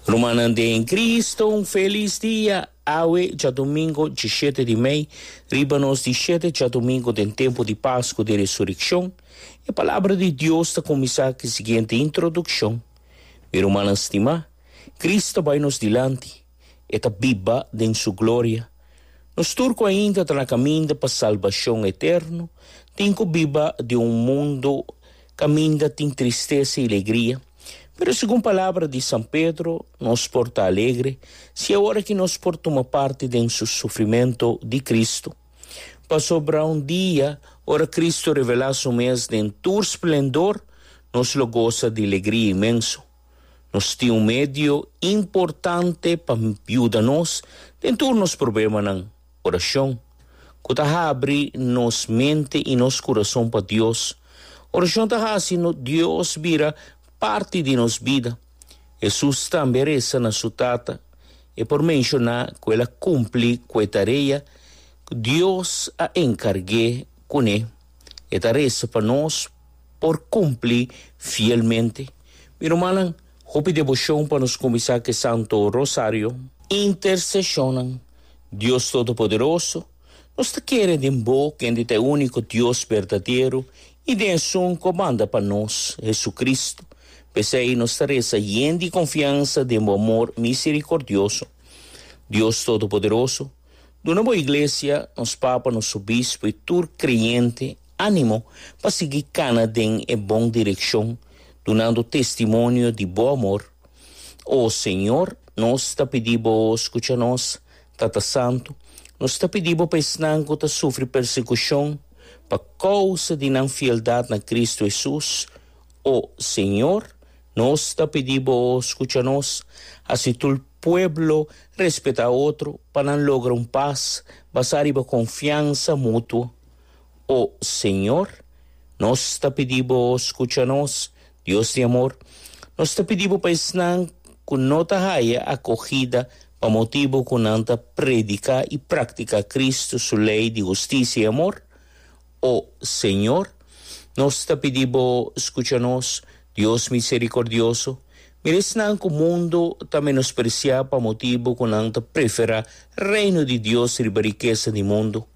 Rumannan den Cristo, un felis dia! Awe dja domingo di shete di mei, riba nos di shete djadomingo den tempu di Pascu di Resurekshon. E Palabra di Dios ta kuminsá ku e siguiente introdukshon, Mi rumannan stimá, Kris ta bai nos dilanti, E ta biba den Su gloria. Nos tur ku ainda ta na kaminda pa salbashon eterno, tin ku biba den un mundu. Kaminda tin tristesa i legria, pero segun palabra di San Pedro, nos por ta alegre siña ora ki nos por tuma parti den su sufrimentu di Kristu. Pasobra un dia, ora Kristu revelá su mes den tur splendor, nos lo gosa di legria inmenso. Nos tin un medio importante pa yuda nos den tur nos problemanan. Oracion, cu ta habri nos mente y nos curason pa Dios. Oracion ta haci nos Dios bira parti di nos bida. Jesús tambe reza na su Tata. E por menciona cu el a cumpli cu e tarea cu Dios a encarge cu ne. E ta reza pa nos por cumpli fielmente. Mi rumannan. Hopi deboshon pa nos kuminsá ku e Santo Rosario. Interseshonnan, Dios Todopoderoso, nos ta kere den Bo, kende ta e úniko Dios berdadero, i den e Sun ku a manda pa nos, Hesukristu. P'esei nos ta resa yen di konfiansa den bo amor miserikordioso. Dios Todopoderoso, duna bo Iglesia, nos papa, nos obispo i tur kreyente, Animo pa sigui cana den e bon direccion dunando testimonio di bo amor. O Señor, nos ta pidi Bo scucha nos. Tata Santu, nos ta pidi Bo pa esnan cu ta sufri persecucion pa causa di nan fieldad na Cristo Jesús. O Señor, nos ta pidi Bo scucha nos. Haci tur pueblo respeta otro pa nan logra un paz basá riba confiansa mutuo. O Señor, nos ta pidi Bo scucha nos. Dios di amor, nos ta pidi Bo pa esnan cu no ta haya acogida pa motibo cu nan ta predica y practica Cristo su ley di husticia y amor. O Señor, nos ta pidi Bo scucha nos. Dios misericordioso, mira esnan cu mundo ta menosprecia pa motibo cu nan ta prefera Reino di Dios riba rikesa di mundo.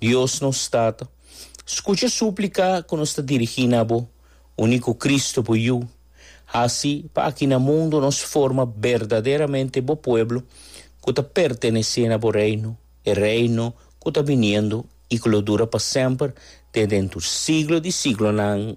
Dios nos Tata, skucha súplika ku nos ta dirigí na bo úniko Kristu, bo Yu. Hasi pa aki na mundu nos forma berdaderamente bo pueblo ku ta pertenesé na bo Reino, e Reino ku ta biniendo i ku lo dura pa semper te den tur siglo di siglonan.